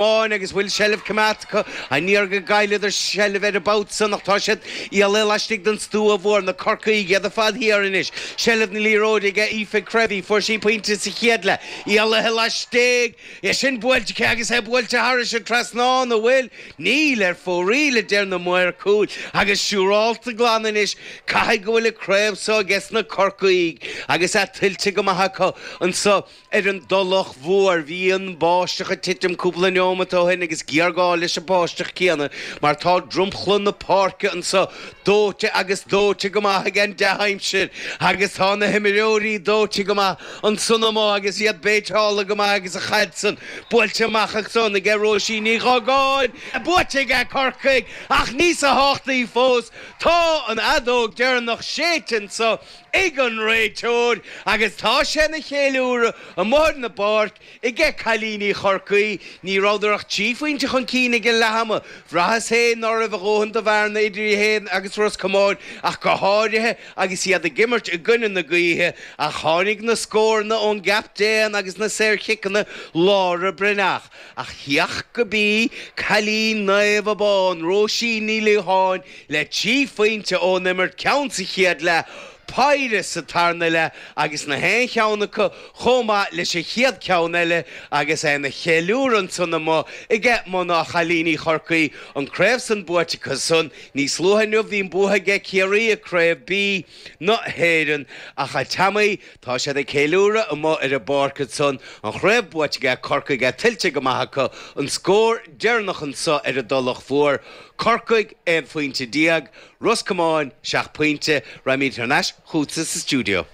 Báin agus bhfuil seilbh coimeádta acu. An iarraidh a gcailleadar seilbh air an babhta san, ach tá siad i leith laistigh den stua mhór, na Corcaígh, iad ar fad thiar anois. Seilbh na liathróide ag Aoife Creevy, fuair sí pointe sa chéad leath. I leith laistigh! É sin buailte aici agus é buailte thairis an trasnán, an bhfuil? Níl, ar fóraoil, a deir na maoir cúil, agus siúrálta glan anois, caithfidh go bhfuil an craobh seo aige sna Corcaígh agus é tuillte go maith acu anso. Ar an dTulach Mhór, bhí an bháisteach ag titim cúpla neomat ó shin agus géarghá leis an bháisteach céanna mar tá dromchla na páirce anso dóite agus dóite go maith ag an dea-aimsir agus tá na himreoirí dóite go maith ansan amuigh agus iad béiteáilte go maith agus an chaid san buailte amach ansan aige Róisín Ní Ghagáin buaite aige Corcaigh ach níosa thábhachtaí fós, tá an fheadóg deireanach séidte anso. ag an réiteoir agus tá sé ina cheiliúradh amuigh ar an bpáirc aige cailíní Chorcaí. Ní rabhadar ach trí phointe chun cinn ag an leathama. Bhraitheas féin ná raibh a dhóthain do bhearna idir iad féin agus Ros Comáin ach go háirithe agus iad ag imirt i gcoinne na gaoithe ach tháinig na scóranna ón gcaptaen agus na saorchiceanna Laura Breathnach. Ach thiocfadh gurb í cailín Naomh Abán, Róisín Ní Liatháin, le trí phointe ón imirt, ceann sa chéad leath, péire sa tarna leath agus nach aon cheann acu chomh maith leis an chéad ceann eile agus é ina cheiliúradh ansan amuigh aige mná, cailíní Chorcaí an craobh san buaite acu san. Níos luaithe inniu bhí an bua aige Ciarraí i Craobh B na hÉireann ach tá amuigh, Tá siad ag ceiliúradh amuigh ar an bpáirc ansan, an chraobh buaite aige Corcaigh agus é tuillte go maith acu, an scór deireanach anso ar an dTulach Mhór, Corcaigh aon phointe déag, Ros Comáin seacht bpointe. Raghaimíd thar n-ais chútsa sa stiúideo.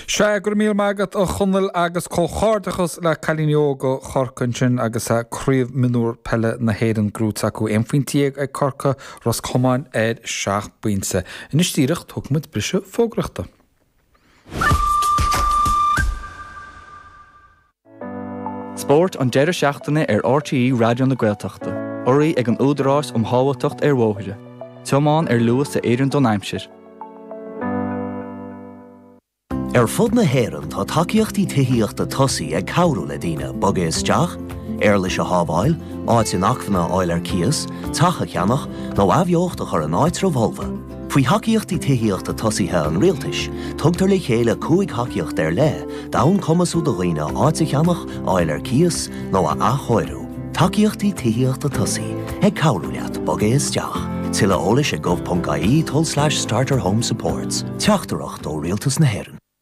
Sea, go raibh míle maith agat, a Chonaill, agus comhghairdeachas le cailíní óga Chorcaí ansin agus sea, craobh mionúr peile na hÉireann gnóite acu, aon phointe dhéag ag Corcaigh, Ros Comáin ar seacht bpointe. Anois díreach, tógfaidh muid briseadh fógraíochta. Spórt an deireadh seachtaine ar RTÉ Raidió na Gaeltachta. Urraithe ag an Údarás um Shábháilteacht ar Bhóithre. Tiomáin ar luas a oireann don aimsir. Ar fud na hÉireann tá tacaíochtaí tithíochta tosaigh ag cabhrú le daoine bogadh isteach, éarlais a shábháil, áit inacmhainne a fháil ar cíos, teach a cheannach, nó athbheocht a chur in áitribh fholmha. Faoi thacaíochtaí tithíochta tosaithe an Rialtais, tugtar le chéile cúig thacaíocht ar leith d'fhonn cumasú do dhaoine áit a cheannach, a fháil ar cíos nó a athchóiriú. Tacaíochtaí Tithíochta Tosaigh, ag cabhrú leat bogadh isteach. Tuilleadh eolais ag gov.ie tulslais starterhomesupports. Teachtaireacht ó Rialtas na hÉireann.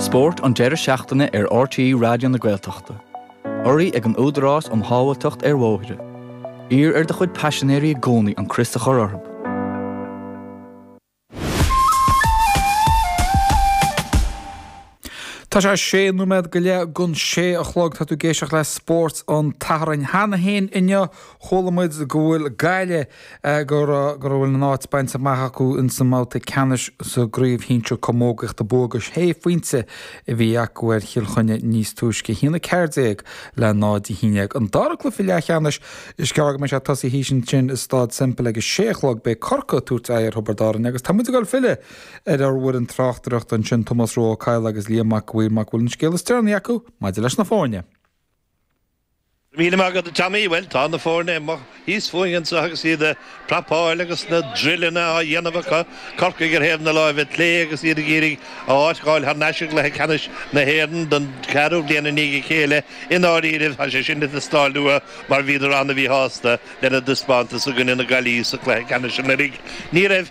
Spórt an deireadh seachtaine ar RTÉ Raidió na Gaeltachta. Urraí ag an Údarás um Shábháilteacht ar Bhóithre. Iarr ar do chuid paisinéirí i gcónaí an crios a chur orthu. Tá sé sé nóiméad go leith go dtí a sé a chlog, tá tú ag éisteacht le Spórt an tSathairn cheana féin inniu. Chuala muid go bhfuil Gaillimh go raibh go bhfuil a n-áit bainte amach acu ins an mbabhta ceannais sa gcraobh shinsir camógaíochta bua de shé phointe a bhí acu ar Chill Chainnigh níos túisce a haon 14 le 0 a haon déag an dara cluiche leathcheannais is gearr go mbeidh sé ag tosaí thíos ansin i Stáid Semple ag a sé a chlog beidh Corcaigh ag tabhairt aghaidh ar Thiobraid Árainn agus tá muid ag filleadh ar ar bhfoireann tráchtaireachta ansin Tomás Rua Ó Cadhla agus Liam go bhfaighidh muid amach cén scéal is deireanaí acu maidir leis na foirne. Míle maith agat a Tommy, bhuel tá na foirne amuigh thíos fúinn anseo agus iad a' prapáil agus na drilleanna á dhéanamh acu, Corcaigh ar thaobh na láimhe clé agus iad ag iarraidh a n-áit a fháil thar n-ais i gcluiche ceannais na hÉireann don cheathrú bliain i ndiaidh a chéile, i ndáiríribh tá sé sin ag ithe istigh iontu mar bhíodar an-mhíshásta lena dtaispeántas i gcoinne na Gaillimhe sa chluiche ceannais anuraidh, ní raibh